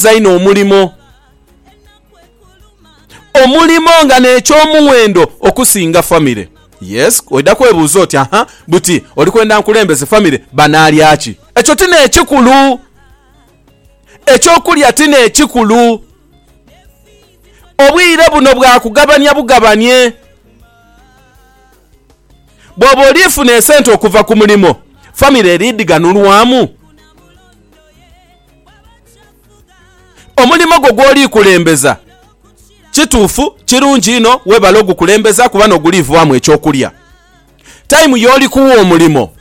Nkirizighanyiza inho omulimo, omulimo nga n'eky'omuwendo okusinga famire. Yes, oidha kwebuuza oti, Aha, buti oli kwenda nkulembeze famire, banaalya ki? Ekyo ti n'ekikulu. Eky'okulya ti n'ekikulu. Obwire buno bwa kugabania bugabanie. Bw'oba oli funa esente okuva ku mulimo, famire eri dhi ghanulwamu? Omulimo gwo gw'oli kulembeza kituufu, kirungi inho webale ogukulembeza kuba n'oguliivwamu eky'okulya. Taimu y'oli kuwa omulimo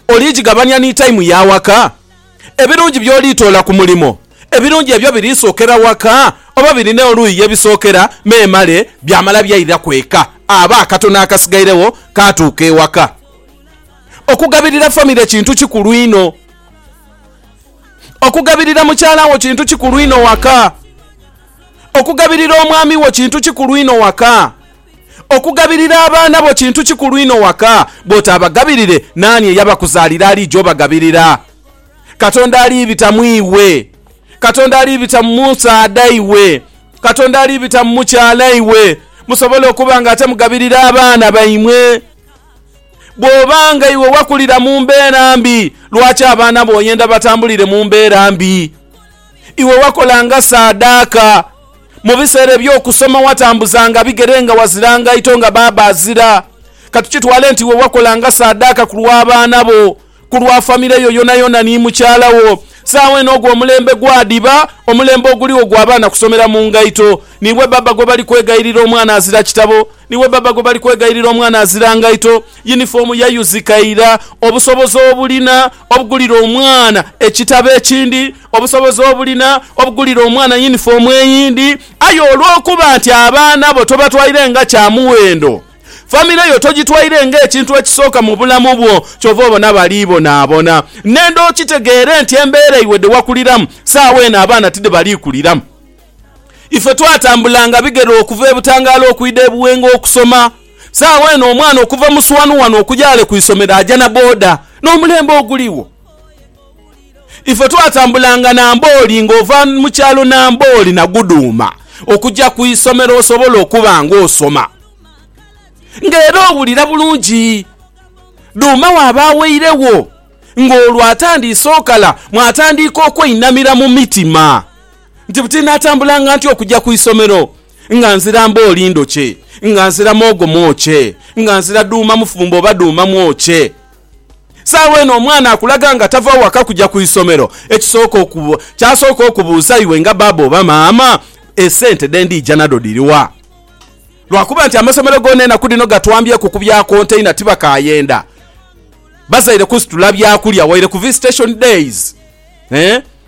oli gigabania ni taimu ya waka? Ebirungi by'oli toola ku mulimo, ebirungi ebyo biri sookera waka oba birina oluuyi ye bisookera? Memale byamala byairaku eka aba akatono akasigairegho kaatuuka ewaka. Okugabirira famire kintu kikulu inho. Okugabirira mukyala wo kintu kikulu inho waka. Okugabirira omwami wo kintu kikulu inho waka. Okugabirira abaana bo kintu kikulu inho waka. Bw'otaabagabirire, naani eyabakuzaalira aliija obagabirira? Katonda alibita mu iwe. Katonda alibita mu musaadha iwe. Katonda alibita mu mukyala iwe, musobole okuba ng'ate mugabirira abaana baimwe. Bw'oba nga iwe wakulira mu mbeera mbi, lwaki abaana bo oyenda batambulire mu mbeera mbi? Iwe wakolanga saadaaka. Mu biseera eby'okusoma watambuzanga bigere nga wazira ngaito nga baaba azira. Ka tukitwale nti iwe wakolanga saadaaka ku lw'abaana bo. Ku lwa famile yo yonayona ni mukyala wo, saagho eno ogwo omulembe gwadhiba omulembe oguligho gwa baana kusomera mu ngaito. Niiwe baba gwe bali kwegayirira omwana azira kitabo, niiwe baba gwe bali kwegayirira omwana azira ngaito. Yunifoomu yayuzika ira. Obusobozi obulina obugulira omwana ekitabo ekindi, obusobozi obulina obugulira omwana yunifoomu eyindi. Aye olw'okuba nti abaana bo tobatwaire nga kya muwendo, Famire yo togitwaire ng'ekintu ekisooka mu bulamu bwo, kyova obona bali bonaabona. Nenda okitegeere nti embeera iwe dhe wakuliramu, saagho eno abaana ti dhe bali kuliramu. Ife twatambulanga bigere okuva e Butangaala okwidha e Buwenga okusoma. Saagho eno omwana okuva Muswanu wano okuja ghale ku isomero aja na boda. N'omulembe oguligho. Ife twatambulanga Nambooli ng'ova mu kyalo Nambooli na Guduuma okugya ku isomero osobole okuba ng'osoma nga era owulira bulungi. Duuma waaba aweiregho ng'olwo atandiise okala mwatandiika okweinamira mu mitima nti buti natambulanga ntya okugya ku isomero nga nzira Mbooli ndhokye, nga nzira Moogo mwokye, nga nzira Duuma mufumbo oba Duuma mwokye. Saagho eno omwana akulaga nga tava waka kuja ku isomero, ekisooka kyasooka okubuuza iwe nga baaba oba maama, esente dhe ndiija nadho dhiri wa? Lwakuba nti amasomero goona enaku dhino gatwambyeku ku bya konteina tibakaayenda bazaire kusitula byakulya waire ku visitation days.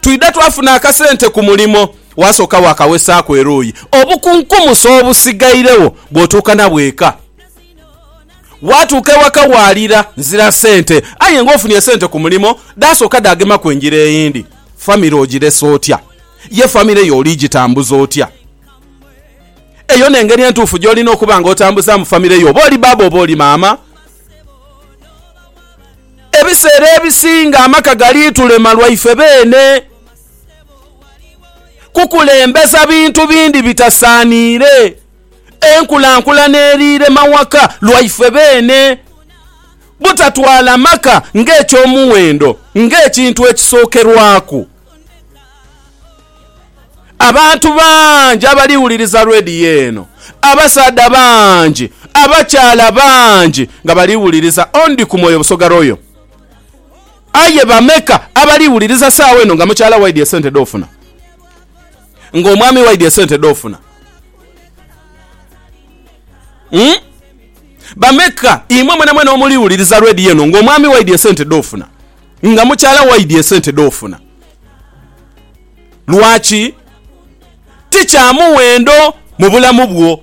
Twidha twafuna akasente ku mulimo, wasooka waakawesaaku eruuyi. Obukunkumusi obusigairegho bw'otuuka nabwo eka. Waatuuka ewaka waalira nzira sente, aye ng'ofunye sente ku mulimo dhaasooka dhaagemaku engira eyindi. Famire ogiresa otya? Ye famire yo oli gitambuza otya? Eyo n'engeri entuufu gy'olina okuba ng'otambuzaamu famire yo, oba oli baaba oba oli maama. Ebiseera ebisinga amaka gali tulema lwaife beene kukulembeza bintu bindi bitasaaniire. Enkulankulana eriire mawaka lwaife beene. Butatwala maka ng'eky'omuwendo ng'ekintu ekisookerwaku. Abantu bangi abali wuliriza radio eno, abasaadha bangi, abakyala bangi nga bali wuliriza Ondikumwoyo Busoga Royal. Aye bameka abali wuliriza saawa eno nga mukyala waidhi esente dhofuna? Nga omwami waidhi esente dhofuna? Umm bameka imwe mwenamwena omuli wuliriza radio eno nga omwami waidhi esente dhofuna? Nga mukyala waidhi esente dhofuna? Lwaki? Ti kya muwendo mu bulamu bwo.